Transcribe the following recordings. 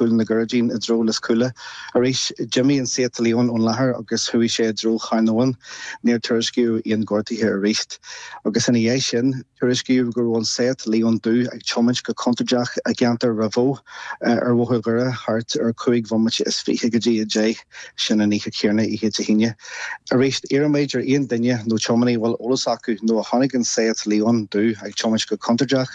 Cúil na gCuirridín i dtreo Lios Cúile. Arís, d'imigh an Seat Leon ón láthair agus chuaigh sé i dtreo Charn Eoghain. Níor tuairiscíodh aon ghortuithe arís. Agus ina dhiaidh sin, tuairiscíodh go raibh an Seat Leon dubh ag tiomáint go contúirteach i gceantar Ráth Bhoth ar Bhóthar Dhoire thart ar chúig bhomaite is fiche go dtí a deich. Sin an oíche chéanna, oíche Dé hAoine. Arís, iarraimid ar aon duine nó tiománaí a bhfuil eolas acu nó a chonaic an Seat Leon dubh ag tiomáint go contúirteach,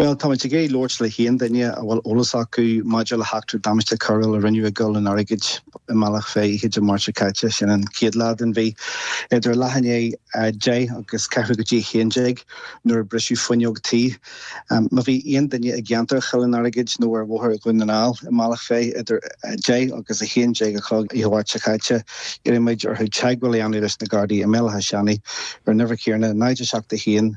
Bhuel, táimid ag iarraidh labhairt le haon duine a bhfuil eolas acu maidir le heachtra damáiste coiriúil a rinneadh i gCoill an Airgid i mBealach Féich oíche Dé Máirt seo caite, sin an chéad lá den mhí, idir leath i ndiaidh a deich agus ceathrú go dtí a haon déag nuair a briseadh fuinneog tí. Má bhí aon duine i gceantar Choill an Airgid nó ar Bhóthar Dhún na nGall i mBealach Féich idir a deich agus a haon déag a chlog oíche Mháirt seo caite, iarraimid orthu teagmháil a dhéanamh leis na Gardaí i mBéal Átha Seanaidh ar an uimhir chéanna, 071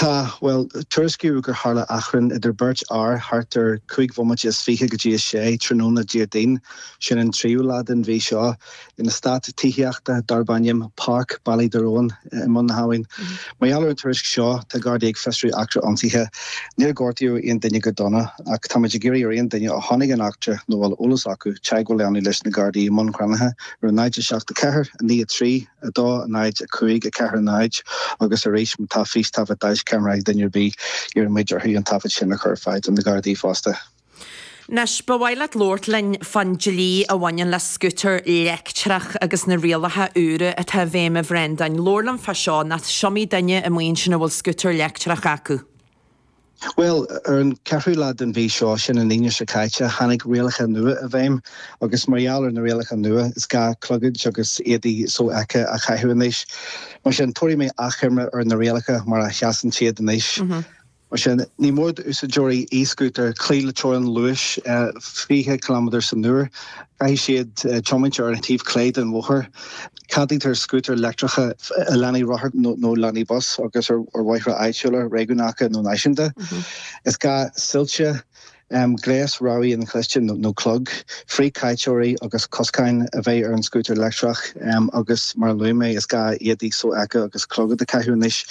Tá, bhuel, tuairiscíodh gur tharla achrann idir beirt fhear thart ar chúig bhomaite is fiche go dtí a sé tráthnóna Déardaoin, sin an tríú lá den mhí seo, in eastát tithíochta darb ainm Páirc Ballyderowen i mBun na hAbhann. Mar gheall ar an tuairisc seo, tá Gardaí ag fiosrú eachtra ionsaithe. Níor gortaíodh aon duine go dona ach táimid ag iarraidh ar aon duine a chonaic an eachtra nó a bhfuil eolas acu teagmháil a dhéanamh leis na Gardaí i mBun Cranncha ar a naid 7 4 9 3 2, 0, 5, 4, 0, agus arís má tá fístaifead deaischeamara ag duine ar bith, iarraimid orthu an taifead sin a chur ar fáil do na Gardaí fosta. Anois, ba mhaith leat labhairt linn fán dlí a bhaineann le scútar leictreach agus na rialacha úra atá i bhfeidhm, a Bhreandáin. Labhair liom fá seo, nó is iomaí duine amuigh ansin a bhfuil scútar leictreach acu. Bhuel, ar an ceathrú lá den mhí seo, sin an Aoine seo caite, tháinig rialacha nua i bhfeidhm agus mar gheall ar na rialacha nua, is gá clogaid agus éadaí sofheicthe a chaitheamh anois. Mar sin, tabharfaidh mé achoimre ar na rialacha mar a sheasann siad anois. Mar sin, ní mór d'úsáideoirí e-scútair cloí le teorainn luais 20 ciliméadar san uair. Caithfidh siad tiomáint ar an taobh clé den bhóthar. Ceadaítear scútair leictreacha i lánaí rothair nó lánaí bus agus ar bhóithre áitiúla, réigiúnacha nó náisiúnta. Is gá soilse, gléas rabhaidh inchloiste nó clog, frithchaiteoirí agus coscáin a bheith ar an scútar leictreach agus, mar a luaigh mé, is gá éadaí sofheicthe agus clogad a chaitheamh anois.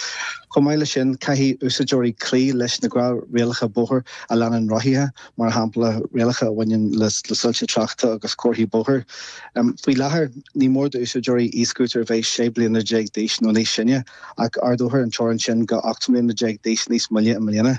Chomh maith leis sin, caithfidh úsáideoirí cloí leis na rialacha bóthair a leanann rothaithe. mar shampla rialacha a bhaineann le soilse tráchta agus comharthaí bóthair. Faoi láthair, ní mór d'úsáideoirí e-scútair a bheith 16 bliana d'aois nó níos sine, ach ardófar an teorainn sin go 18 mbliana d'aois níos moille i mbliana.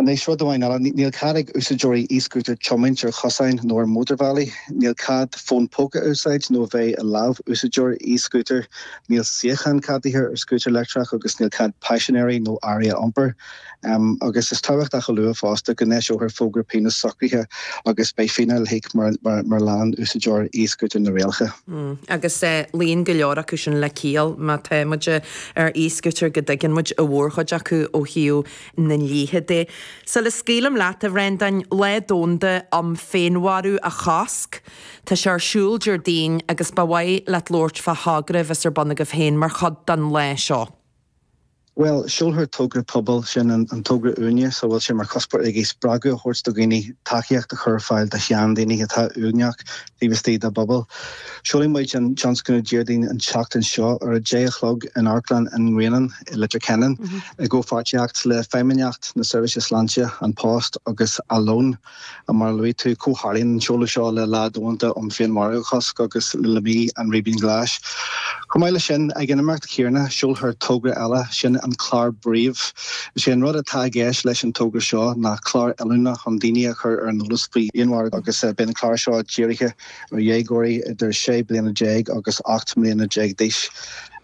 Anois rud amháin eile, níl cead ag úsáideoirí e-scútair tiomáint ar chosáin nó ar mhótarbhealaí, níl cead fón póca a úsáid nó a bheith i lámh úsáideora e-scútair, níl suíochán ceadaithe ar scútar leictreach agus níl cead paisinéirí nó earraí a iompar Um agus is tábhachtach a lua fosta go n-eiseofar fógra pionóis socraithe agus beidh fíneáil le híoc mar, mar, mura leanann úsáideoir e-scooter na rialacha. Mm agus eh, luíonn go leor acu sin le ciall má tá muid eh, ar e-scooter go dtuigeann muid an mhórchuid acu ó thaobh na ndlíthe de. Sula scaoilim leat a Bhrendáin, Lá Domhanda um Féinmharú a Chosc tá sé ar siúl Déardaoin agus ba mhaith leat labhairt fá thogra a bheas ar bun agaibh féin mar chuid den lá seo. Bhuel, seolfar togra pobail, sin an togra uaignis a bhfuil sé mar chuspóir aige spreagadh a thabhairt do dhaoine tacaíocht a chur ar fáil do sheandaoine atá uaigneach taobh istigh dá bpobal. Seolfaidh muid an tionscnamh Déardaoin an tseachtain seo ar a deich a chlog in Amharclann an nGrianáin i Leitir Ceanainn i gcomhpháirtíocht le Feidhmeannacht na Seirbhíse Sláinte, An Post agus Alone. Mar a luaigh tú, comhtharlaíonn an seoladh seo le lá domhanda um Féinmharú a Chosc agus le Mí an Ribín Ghlais. Chomh maith leis sin, ag an imeacht chéarna, seolfar togra eile, sin an clár Breathe. Is é an rud atá i gceist leis an togra seo ná clár oiliúna chun daoine a chur ar an eolas faoi fhéinmharú agus beidh an clár seo dírithe, ar dhéagóirí idir 16 bliana agus 18 mbliana d'aois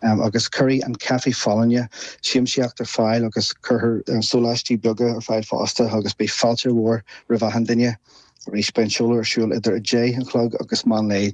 agus cuirfidh an caife folláine siamsaíocht ar fáil agus cuirfear sóláistí beaga ar fáil fosta agus beidh fáilte mhór roimh achan duine. Arís, beidh an seoladh ar siúl idir 10 a chlog agus meán lae.